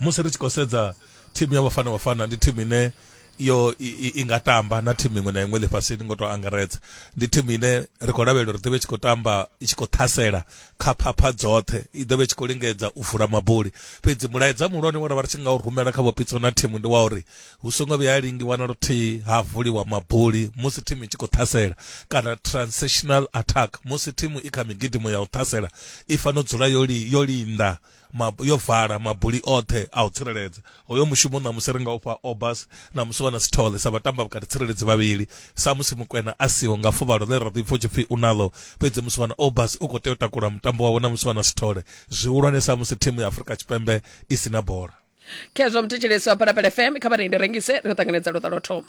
musi ri tshi khou sedza thimu ya Bafana Bafana ndi thimu ine yo i, i, i nga tamba na thimu iṅwe na iṅwe ḽifhasini ngo tou angaredza ndi thimu ine ri khou lavhelela uri ḓovha i tshi khou tamba i tshi khou ṱhasela kha phapha dzoṱhe i ḓovha i tshi khou lingedza u vula mabuli fhedzi mulaedza muhulwane wa ra vha ri tshi nga u rumela kha vhopitso na thimu ndi wa uri hu songo vhuya lingiwa na luthihi ha vuliwa mabuli musi thimu i tshi khou ṱhasela kana transitional attack musi thimu i kha migidimo ya u ṱhasela i fanela u dzula yo, li, yo linda yo vala mabuli oṱhe a u tsireledza hoyo mushumo ṋamusi ri nga ufha obas ṋamusi wana sithole sa vhatamba vhukati tsireledzi vhavhili samusi mukwena a siho nga fuvhalo ḽe ra ḓipfa u tshipfi u naḽo fhedzi musi wana obas u khou tea u takula mutambo wawe ṋamusi wana sithole zwihulwane samusi thimu ya afurika tshipembe i si na bola khezwo mthetshelesi wa phalaphala fm kha vharendi rengise ri ṱanganedza luṱa lwo thoma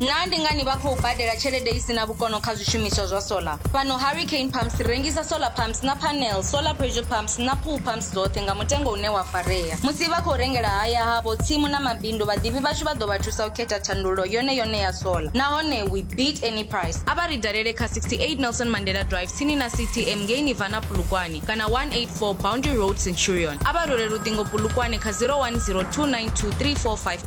Naa ndi ngani vha khou badela tshelede i si na vhukono kha zwishumiswa zwa sola? Fhano Harry Kane Pumps ri rengisa solar pumps na panel, solar pressure pumps na pool pumps dzoṱhe nga mutengo une wa farea. Musi vha khou rengela haya havho, tsimu na mabindu, vhaḓivhi vhashu vha ḓo vha thusa u khetha thandululo yone yone ya sola nahone we beat any price. A vha ri dalele kha 68 Nelson Mandela Drive tsini na CTM ngei Nirvana Polokwane kana 184 Boundary Road Centurion. A vha rwele luṱingo Polokwane kha 0102923454.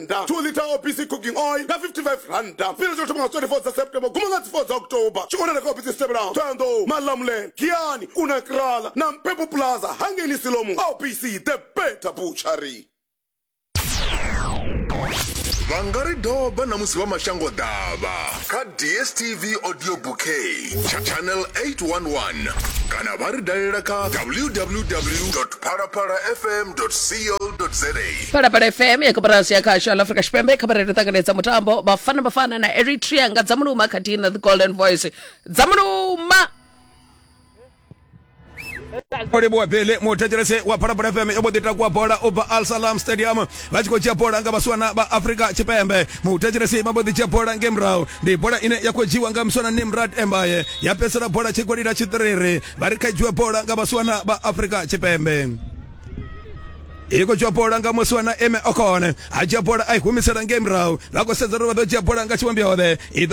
randa 2 liter opc cooking oil nga 55 randa fhira tsho thoma nga 24 dza september guma nga dzi 4 dza october tshi konana kha opc dzi tevhelaho thoyandou malamulele giani kuna krala na mpepo plaza hangeni silomu opc the better butchery vha nga ri doba na musi vha mashango ḓavha kha dstv audio bouquet channel 811 kana vha ri dalela kha www phalaphala fm co za phalaphala fm ya koporasi ya khasho la afrika tshipembe i khabarelo ṱanganedza mutambo bafana bafana na eritrea nga dzamuluma khathihi na the golden voice dzamuluma olebowa bele muthetshelese wa phalaphala fm yo mbo ḓi takuwa bola u bva al salam stadium vha tshi khou dzhia bola nga vhaswana vha afrika tshipembe muthetshelesi vha mbo ḓi dzhia bola nge murahu ndi bola ine ya khou dzhiwa nga muswana nimrad embaye ya fhedzisela bola tshigoli ḽa tshiṱiriri vha ri kha dzhiwe bola nga vhaswana vha afrika tshipembe i khou dzhiwa bola nga muswana eme okone a dzhia bola a i humisela nge murahu vha khou sedza uri vha ḓo dzhia bola nga tshivhombiode i ḓo